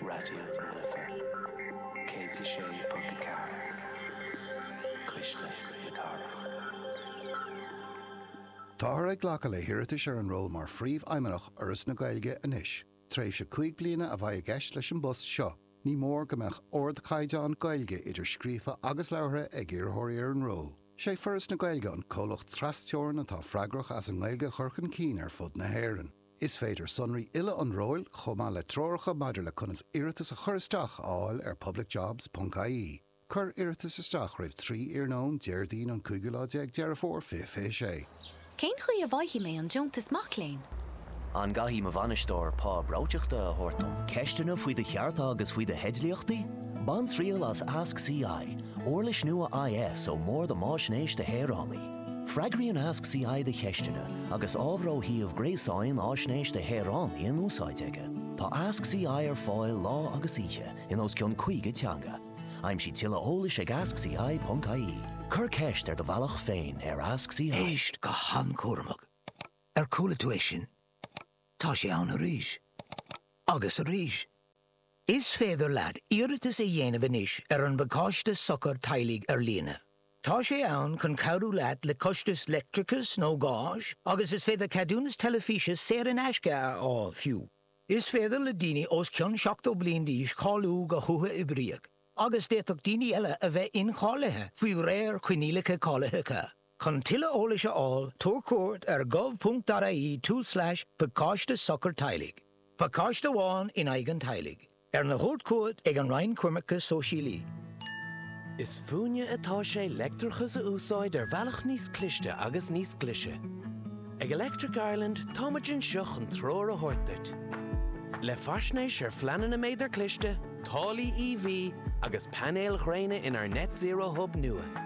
Raidió na Life 106.4, Cuisle na Cathrach. Táthar ag glacadh le hiarratais ar an ról mar Phríomhfheidhmeannach Fhoras na Gaeilge anois. Tréimhse cúig bliana a bheidh i gceist leis an bpost seo. Ní mór go mbeadh ardchaighdeán Gaeilge, idir scríofa agus labhartha, ag iarrthóirí ar an ról. Is é Foras na Gaeilge an comhlacht tras-teorann atá freagrach as an nGaeilge a chur chun cinn ar fud na hÉireann. Is féidir sonraí uile an róil, chomh maith le treoracha maidir le conas iarratas a chur isteach, a fháil ar publicjobs.ie. Cuir iarratas isteach roimh 3 iarnóin Déardaoin an cúigiú lá déag Deireadh Fómhair 2026. Cén chaoi a bhfaighidh mé an deontas mac léinn? An gcaithfidh mo bhainisteoir pá breoiteachta a thabhairt dom? Ceisteanna faoi do chearta agus faoi do theidlíochtaí? Bain triail as Ask CI, uirlis nua IS ón mBord um Fhaisnéis do Shaoránaigh. Freagraíonn Ask CI do cheisteanna agus ábhar ó shuíomh gréasáin Fhaisnéis do Shaoránaigh in úsáid aige. Tá Ask CI ar fáil lá agus oíche in os cionn 50 teanga. Aimsigh tuilleadh eolais ag askci.ie. Cuir ceist ar do bhealach féin ar Ask CI. Éist go han-chúramach. Ar chuala tú é sin? Tá sé ann arís. Agus arís. Is féidir leat iarratas a dhéanamh anois ar an bPacáiste Sochair Teaghlaigh ar líne. Tá sé ann chun cabhrú leat le costais leictreachais nó gáis agus is féidir ceadúnas teilifíse saor in aisce a fháil, fiú. Is féidir le daoine os cionn 70 bliain d'aois cáiliú go huathoibríoch agus d'fhéadfadh daoine eile a bheith incháilithe faoi réir coinníollacha cáilitheacha. Chun tuilleadh eolais a fháil, tabhair cuairt ar gov.ie tulslais pacáiste sochair teaghlaigh, pacáiste amháin in aghaidh an teaghlaigh, arna thabhairt chugat ag an Roinn Coimirce Sóisialaí. Is fúinne atá sé leictreachas a úsáid ar bhealach níos cliste agus níos glice. Ag Electric Ireland táimid anseo chun treoir a thabhairt duit. Le faisnéis ar phleananna méadair chliste, táillí EV agus painéil ghréine inár Net Zero Hub nua,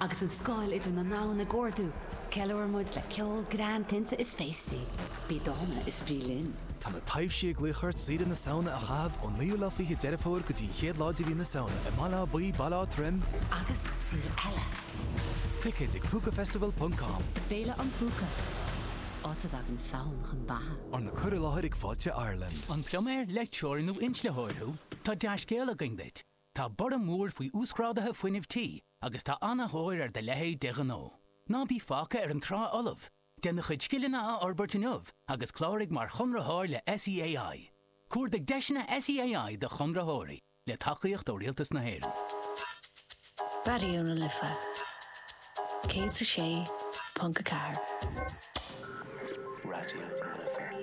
Agus an scáil idir na domhain ag ardú, ceiliúrann muid le ceol, greann, tinte is féastaí. Bí dána is bí linn! Tá na taibhsí ag glaoch ort Oíche na Samhna a chaitheamh ón naoú lá fiche Deireadh Fómhair go dtí an chéad lá de mhí na Samhna i mBaile Átha Buí, Baile Átha Troim, agus araile! Ticéid ag Púcafestival ponc com. Féile an Phúca, áit a dtagann Samhain chun beatha. Arna cur i láthair ag Fáilte Ireland. An pluiméir, leictreoir nó inslitheoir thú? Tá dea-scéal againn duit! Tá borradh mór faoi uasghrádaithe fuinnimh tí agus tá an-thóir ar do leithéid de ghnó. Ná bí fágtha ar an trá fholamh! Déan do chuid scileanna a fhorbairt inniu agus cláraigh mar chonraitheoir le SEAI. Cuardaigh deiseanna SEAI do chonraitheoirí, le tacaíocht ó Rialtas na hÉireann. Raidió na Life 106.4. Raidió na Life.